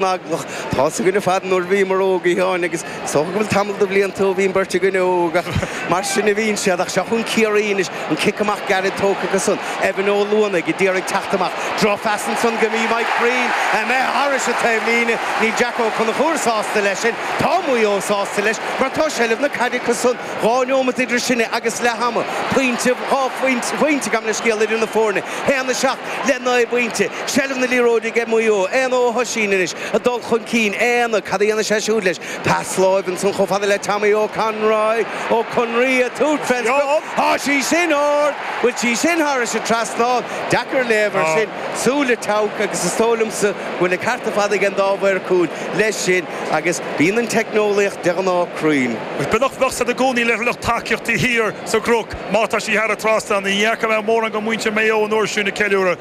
naglach. Tá a fhios againn ar fad nuair a bhíomar óg, a Sheáin, agus is dócha go bhfuil tamall de bhlianta ó bhí an bheirt againne óg, ach mar sin a bhíonn siad. Ach seo chugainn Ciarraí anois, an cic amach gairid tógtha acu san, Evan Ó Luanaigh ag d'iarraidh ag teacht amach, drochphas ansan go dtí Mike Breen, imithe thairis an taobhlíne. Níl Jack Ó Conchúir sásta leis sin, tá Maigh Eo sásta leis, mar tá seilbh na caide acu san, dhá neomat idir sinne agus leath ama, pointe, dhá phointe, pointe, gabh mo leithscéal idir na foirne, haon a seacht le naoi bpointe. Seilbh na liathróide aige Maigh Eo. Éanna Ó hOisín anois ag dul chun cinn. Éanna, cad a dhéanfaidh sé siúd leis? Pas láimhe ansan chomh fada le Tommy Ó Conroy. Ó Conroy ag tabhairt fén sprioc. Tá sí sin ard! Bhfuil sí sin thairis an trasnán. Deacair léamh air sin. Súil an tSeabhaic agus is dóigh liomsa go bhfuil an ceart ar fad ag an dá mhaor cúil leis sin agus bíonn an teicneolaíocht de ghnáth cruinn. Bheadh bheadh a fhios agat i gcónaí le lucht tacaíochta thiar sa gCnoc má tá sí thar an trasnán. Ní fhaca mé mórán de mhuintir Maigh Eo an uair sin ag ceiliúradh.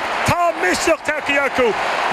Tá misneach tagthaí acu.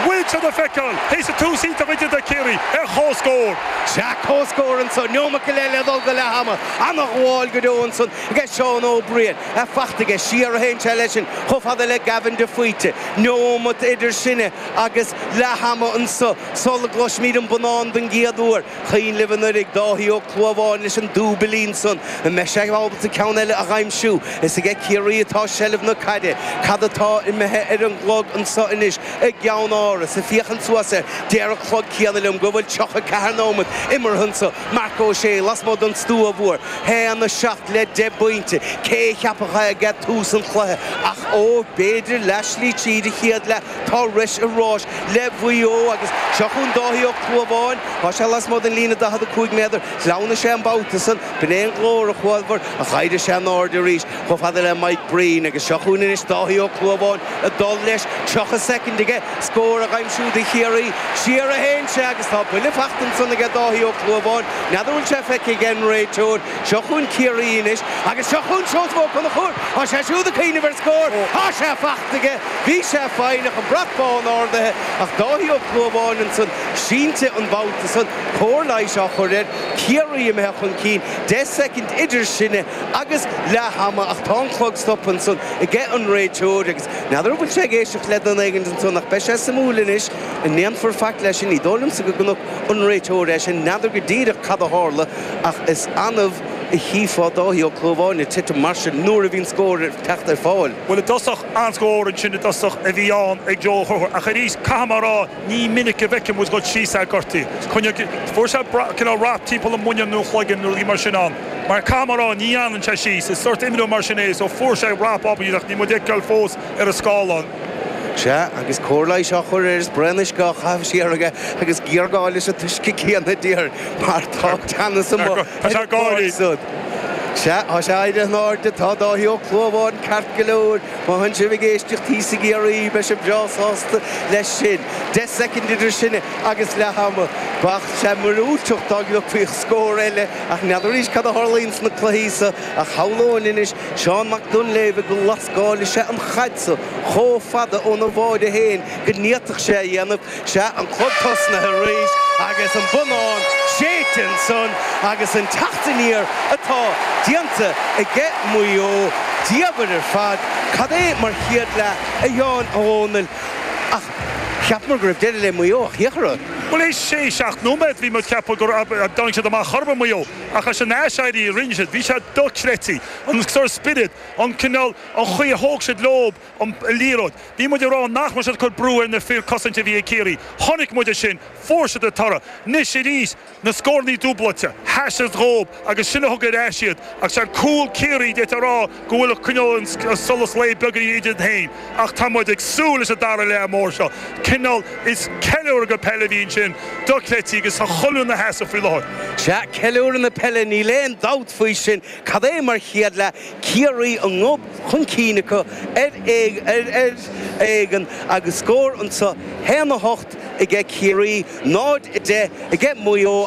Bhfuil siad le feiceáil théis an tús iontach idir do Chiarraí ar chomhscór? Sea, comhscór anso, neomat eile le dhul go leath ama. Ana-ghabháil go deo ansan aige Seán Ó Briain. Í fachta aige, siar a théann sé leis sin, chomh fada le Gavin de Faoite. Neomat idir sinne agus leath ama anso, sul a gcloisfimid an bonnán don gcéad uair. Cuimhin libh anuraidh Dáithí Ó Clúmháin leis an dúbilín san, an mbeidh sé ábalta ceann eile a dh'aimsiú. Is aige Ciarraí atá seilbh na caide. Cad atá imithe ar an gclog anso anois i gCeannáras? Ag féachaint suas air, deir an clog céanna liom go bhfuil 34 nóimeat imeartha anso. Marc Ó Sé lasmuigh don stua mhór. 1, 7 le deich bpointe. Cé a cheapfadh é ag tús an chluiche ach, ó, b'fhéidir leathslí tríd an chéad leath. Tá Rois i ráis le Maigh Eo agus seo chugainn Dáithí Ó Clúmháin. Tá sé lasmuigh den líne 45 méadar. Shleamhnaigh sé an babhta san. B'in é an glór a chualabhair ach d'éirigh sé in airde arís chomh fada le Mike Breen agus seo chugainn anois Dáithí Ó Clúmháin ag dul leis. 30 soicind aige scór a aimsiú do Chiarraí. Siar a théann sé agus tá buille fachta ansan aige Dáithí Ó Clúmháin. N'fheadar bhfuil sé feicthe aige an réiteoir. Seo chugainn Ciarraí anois agus seo chugainn Seosamh Ó Conchúir. Tá sé siúd ag cuimhneamh ar scór. Tá sé fachta aige. Bhí sé foighneach, an brat bán ardaithe ach Dáithí Ó Clúmháin ansan sínte an babhta san, cóir leighis á chur air, Ciarraí imithe chun cinn deich soicind idir sinne agus leath ama ach tá an clog stoptha ansan aige an réiteoir agus n'fheadar an bhfuil sé ag éisteacht le duine éigint ansan ach beidh sé suimiúil anois an ndéanfar faic leis sin, ní dóigh liomsa go gconaic an réiteoir é sin, n'fheadar go díreach cad a tharla ach is annamh a chífeá Dáithí Ó Clúmháin ag titim mar sin nuair a bhíonn scór ag teacht ar fáil. Bhuel i dtosach, An scór ansin i dtosach a bhí ann ag Joe Ó Conchúir ach arís caithfidh mé a rá ní minic go bhfeicfidh muid ag dul síos é gortaithe. Fuair sé cineál rap timpeall an mhuinéil nó an chloiginn nó rudaí mar sin ann mar caithfidh mé a rá ní fhanann sé síos. Is sórt imreoir mar sin é so fuair sé rap eicínt ach níl muid ag feiceáil fós ar an scáileán. Sea, agus cóir leighis á chur air is braon uisce á chaitheamh siar aige agus géarghá leis an t-uisce céanna déarfainn mar tá teannas amuigh. Tá sé ag gáirí! Sea, tá sé éirithe in airde, tá Dáithí Ó Clúmháin ceart go leor. Má tánn sibh ag éisteacht thíos i gCiarraí, beidh sibh breá sásta leis sin. Deich soicind idir sin agus leath ama. Bheadh sé miorúilteach dá gcliocfaí scór eile, ach n'fheadar arís cad a tharlaíonn sna cluichí seo. Ach shamhlóinn anois Seán Mac Duinnshléibhe go lascálfadh sé an chaid seo chomh fada óna bháide féin go bhféadfadh sé a dhéanamh. Sea, an clog tosnaithe arís agus an bonnán séidte ansan agus an teacht aniar atá déanta aige Maigh Eo. Diabhal ar fad cad é mar chéad leath a Sheáin Uí Dhomhnaill ach cheapamar go raibh deireadh le Maigh Eo ach thiocfadh rud. Bhuel théis sé seacht nóiméad bhí muid ag ceapadh nach dtáinig siad amach chor ar bith Maigh Eo ach leis an aiséirí a rinne siad bhí sé dochreidte an sórt spiorad, an cineál, an chaoi a thóg siad leob. an liathróid. Bhí muid ag rá nach raibh siad ag cur brú ar na fir cosaint a bhí ag Ciarraí. Chonaic muid é sin. Fuair siad an toradh. Anois arís, na scórannaí dúbláilte. Sheas sé dhóib agus sin a thug ar ais iad. Ach sé an cúl Ciarraí d'fhéadfá a rá go bhfuil ag coinneáil an solas lae beagáinín idir iad féin. Ach tá muid ag súil leis an dara leath mór seo. Cineál is ceiliúradh peile a bhí ansin dochreidte agus tá chuile dhuine ina sheasamh faoi láthair. Sea, ceiliúradh na peile, níl aon dabht faoi sin. Cad é mar chéad leath Ciarraí a ngob chun cinn acu ar éigean agus scór anseo, 1-8 aige Ciarraí, 0-10 aige Maigh Eo.